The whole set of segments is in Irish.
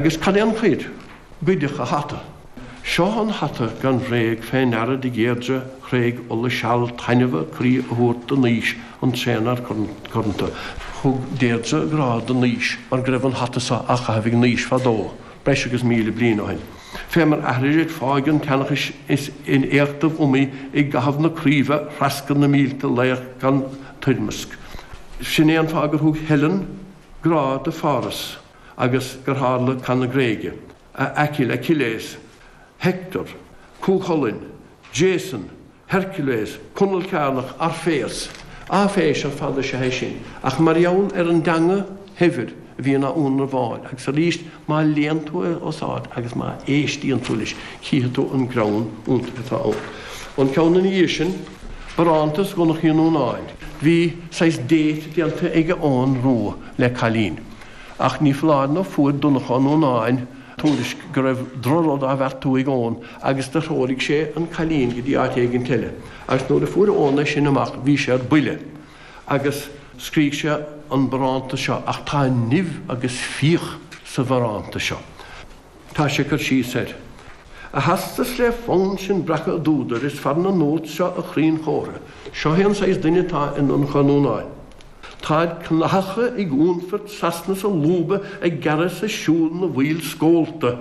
Agus cad é an choir? Goideadh a hata. Seo an hata gan bhréag fé ndeara do Dheirdre thréig Uladh seal taitneamh a croí a thabhairt do Naois an tréanfhear curanta. Thug Deirdre grá do Naois mar go raibh an hata so á chaitheamh ag Naois fadó, breis agus míle bliain ó shin. Fé mar aithrisid fáidh an tseanchais is in éachtaibh iomaí i gcathaibh na Craoibhe threascair na mílte laoch gan toirmeasc. Sin é an fáth gur thug Helen grá do Pháras. agus gur tharla Cath na Gréige, a Aicill, Achilles, Hector, Cú Chulainn, Jason, Hercules, Conall Cearnach, Orfeas, áiféis ar fad is ea é sin, ach mar gheall ar an dteanga shaibhir a bhíonn á ionramháil, agus arís, má léann tú é os ard agus má éistíonn tú leis, chífidh tú an greann iontach atá ann. An ceann ina dhiaidh sin, Barántas Dhonnchadh Uí Núnáin, bhí saghas date déanta ag Eoghan Rua le cailín. Ach ní foláir ná fuair Donnchadh Ó Núnáin tuairisc go raibh droch-rud á bheartú ag Eoghan agus do threoraigh sé an cailín go dtí áit éigint eile. Agus nuair a fuair Eoghan é sin amach bhí sé ar buile agus scrígh sé an barántas seo, ach tá nimh agus fíoch sa bharántas seo. Tá sé ag cur síos air. A theastas le fonn sinn breacadh a d'údar is fearr na notes seo a chríon chomhartha, seo é an saghas duine atá i nDonnchadh Ó Núnáin. Táid cnathacha ag únfairt, Sasana sa lúba ag gearradh is ag siúl na bhfuíoll scólta,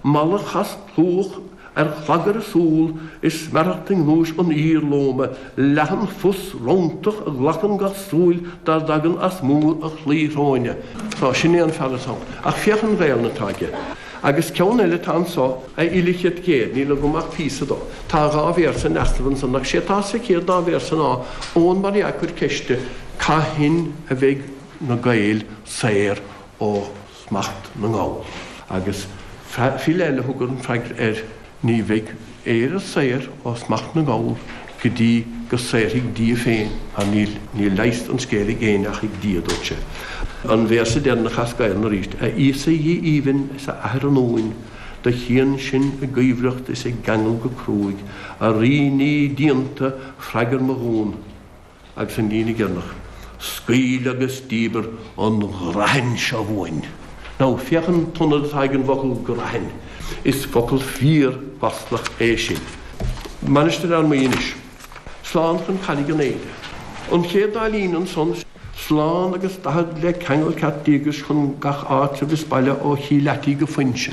mala chas chlúmhach Ar chogar a súl, is smearacht i ngnúis an fhir lóma, leathanphus rontach, a ghlacann gach súil dá dtagann as múr a chlaí shróine. Sea, sin é an fear atá ann. Ach féach an Ghaelainn atá aige. Agus ceann eile atá anso, a fhile chirt ghéir, níl agam ach píosa dó. Tá dhá véarsa in easnamh ansan, ach 'sé atá sa chéad dá véarsa ná, Eoghan mar dhea ag cur ceiste, Cathain a bheidh na Gaeil saor ó smacht na nGall. Agus file eile a thug an freagra air, Ní bheidh Éire saor ó smacht na nGall go dtí go saorfaidh Dia féin í. Níl leigheas an scéil ag éinne ach ag Dia, dúirt sé. An véarsa deireanach as Gaelainn arís, A Íosa Dhia aoibhinn is a Athair an Uain, Do chíonn sinn i gcuibhreacht is i gceangal go cruaidh, A Rí nimhe díonta, freagair mo dhuan. Agus an líne deireanach, Scaoil agus díbir an ghrathain seo uainn. Now, féach an t-ionad atá ag an bhfocal grathain. Is focal fíor-mhaslach é sin. Mainistir Fhear Maí anois. Slán chun Carraig an Éide. An chéad dá líne ansan, Slán agus daichead le ceangal ceart díograis chun gach áitreabh is baile ó Chill Fhaitigh go Foinse.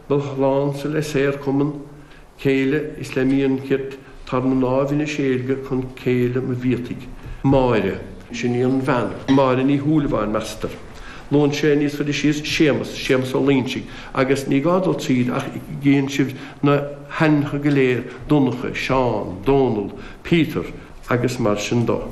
Mo shlánsa le saorchumann céille is le mian cirt tar na ndáimh ina seilge chun céile mo bhiataigh. Máire. Sin í an bhean. Máire Ní Shúilleabháin, meastar. Luann sé níos faide síos Séamas, Séamas Ó Loingsigh, agus ní gá dul tríd ach cíonn sibh na hainmneacha go léir, Donncha, Seán, Dónall, Peter agus mar sin dó.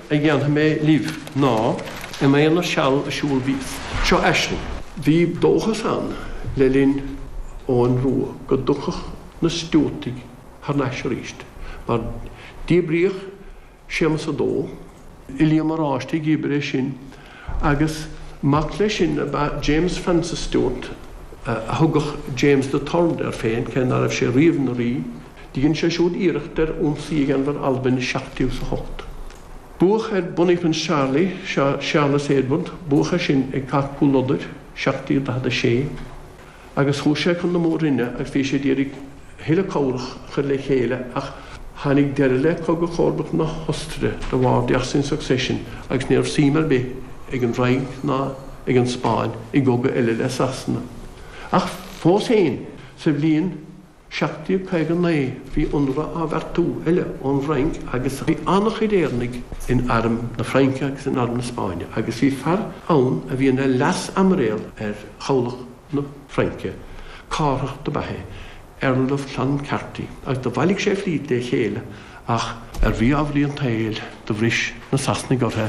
a dhéanfaidh mé libh ná Im aonar seal ag siúl bhíos. Seo aisling. Bhí dóchas ann le linn Eoghain Rua go dtiocfadh na Stiúartaigh thar n-ais arís, mar díbríodh Séamas a Dó, Uilliam Oráiste a dhíbir é sin agus mac leis sin ab ea James Francis Stuart, a thugadh James the Third air féin, cé ná raibh sé riamh ina rí. Dhein sé siúd iarracht ar ionsaí a dhéanamh ar Albain i 1708. Buadh ar Bonnie Prince Charlie, Charles Edward, buadh air sin ag Cath Chúil Lodair, 1746. agus chuaigh sé chun na Mór-Roinne agus bhí sé ag iarraidh a thuilleadh cabhrach a chur le chéile ach tháinig deireadh le Cogadh Chomharbachta na hOstaire the War of the Austrian Succession agus ní raibh suim ar bith ag an bhFrainc ná ag an Spáinn i gcogadh eile le Sasana. Ach fós féin, sa bhliain. 1759 bhí ionradh á bheartú eile ón bhFrainc agus bhí an-chuid Éireannaigh in arm na Fraince agus in arm na Spáinne agus bhí fear ann a bhí ina leas-aimiréal ar chabhlach na Fraince, Cárthach ab ea é, Earl of Clancarty, agus do bhailigh sé a flít le chéile ach, ar mhí-ámharaí an tsaoil, do bhris na Sasanaigh ortha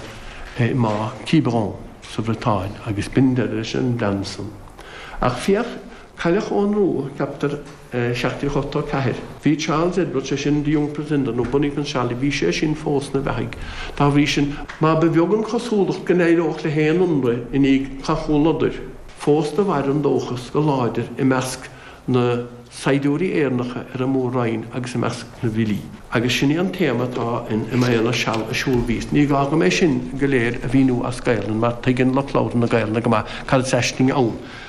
i mBá Quiberon sa Bhriotáin agus b'in deireadh leis an bplean san. Ach féach Cailleadh Eoghan Rua, ceaptar, 1784. Bhí Charles Edward, sé sin, The Young Pretender, nó Bonnie Prince Charlie, bhí sé sin fós ina bheathaigh, dá bhrí sin, má ba bheag an chosúlacht go n-éireodh le haon ionradh i ndiaidh Chath Chúil Lodair, fós do mhair an dóchas go láidir i measc na saighdiúirí Éireannacha ar an Mór-Roinn agus i measc na bhfilí, agus sin é an téama atá in Im Aonar Seal ag Siúl Bhíos. Ní gá dhom é sin go léir a mhíniú as Gaelainn, mar tuigeann lucht labhartha na Gaelainne go maith cad is aisling ann,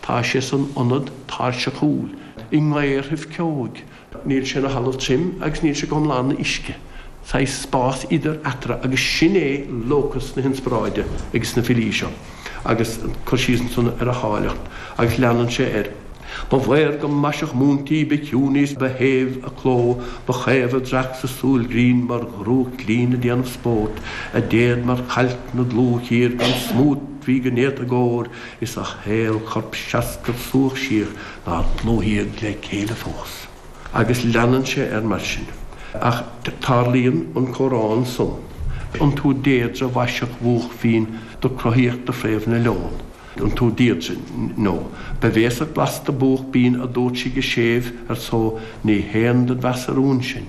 Tá sé san ionad tairseachúil i ngaorthaibh ceoigh. Níl sé ina thalamh tirim agus níl sé go hiomlán ina uisce. Saghas spás idir eatarthu agus sin é locus na hinspioráide ag sna filí seo agus cur síos ansan ar a háilleacht. Agus leanann sé air. Ba mhaorga maiseach múinte í ba chiúin í 's ba shéimh a cló, Ba chaomh a dreach 's a súil ghrinn mar dhrúcht ghlinn a' déanamh spóirt, A déad mar chailc 'na dlúthchíor gan smúit bhí go néata i gcóir, Is a haolchorp seascair subhach síoch nár dlúthaíodh le céile fós. Agus leanann sé air mar sin. Ach tarlaíonn an comhrá ansan an tú Deirdre mhaiseach bhúch mhín do cruthaíodh do phréamh na leon an tú Deirdre nó ba bhéasach blasta búch binn a dúirt sí go séimh ar só Ní haon dod mheas a rúin sinn,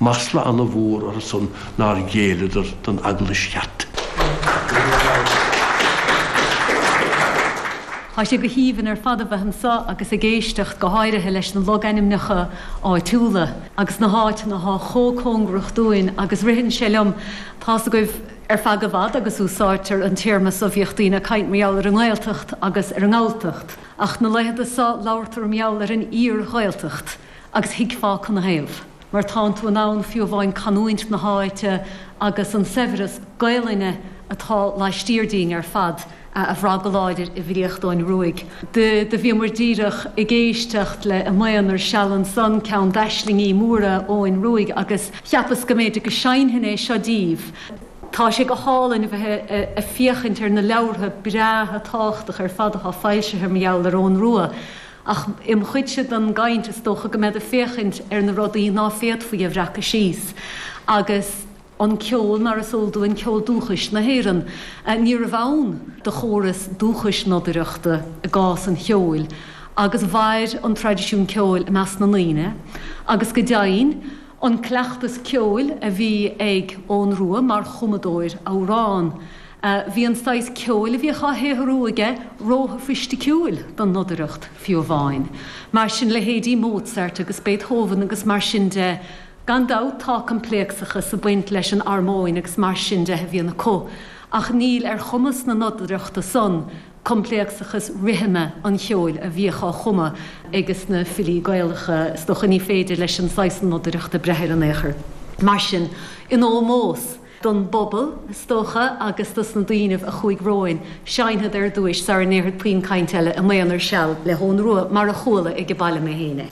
Masla ana-mhór orthu san nár ghéilleadar don Eaglais cheart. Tá sé go haoibhinn ar fad a bheith anso agus ag éisteacht, go háirithe, leis na logainmneacha áitiúla agus na háiteanna atá chomh cóngarach dúinn agus ritheann sé liom, tá's agaibh ar feadh i bhfad agus úsáidtear an téarma so, bhíodh daoine ag caint mar gheall ar an nGaeltacht agus ar an nGalltacht, ach na laethanta so, labhartar mar gheall ar an iar-Ghaeltacht. agus thuigfeá canathaobh, mar tánn tú in ann fiú amháin canúint na háite agus an saibhreas Gaelainne atá laistiar dínn ar fad a bhrath go láidir i bhfilíocht Eoghain Ruaidh. Do bhíomair díreach ag éisteacht le 'Im Aonar Seal' ansan ceann d'aislingí móra Eoghain Ruaidh, agus cheapas go mb'fhéidir go seinnfinn é seo díbh. Tá sé go hálainn a bheith ag féachaint ar na leabhartha breátha tábhachtacha ar fad atá foilsithe mar gheall ar Eoghan Rua, Ach im chuidse den gcaint, is dócha go mbead ag féachaint ar na rudaí ná féadfaí a bhreacadh síos. Agus an ceol, mar is eol dúinn, ceol dúchais na hÉireann, níorbh ann do chóras dúchais nodaireachta i gcás an cheoil, agus mhair an traidisiún ceoil i measc na ndaoine, agus go deimhin, an cleachtas ceoil a bhí ag Eoghan Rua mar chumadóir amhrán, Bhí an saghas ceoil a bhíodh á shaothrú aige róshofaisticiúil don nodaireacht, fiú amháin. Mar sin, leithéidí Mozart agus Beethoven agus mar sin de. Gan dabht, tá coimpléacsachas ag baint leis an armóin agus mar sin de a bhíonn acu, ach níl ar chumas na nodaireachta san coimpléacsachas rithime an cheoil a bhíodh á chumadh ag na filí Gaelacha, is dócha. Ní féidir leis an saghas nodaireachta breith air in aon chor. Mar sin, in ómós. don bpobal, is dócha, agus dos na daoinibh a chuaidh romhainn, seinnfead ar dtúis, sara ndéarfad puinn cainte eile, Im Aonar Seal le hEoghan Ruadh, mar a chuala ag a' baile mé féin é.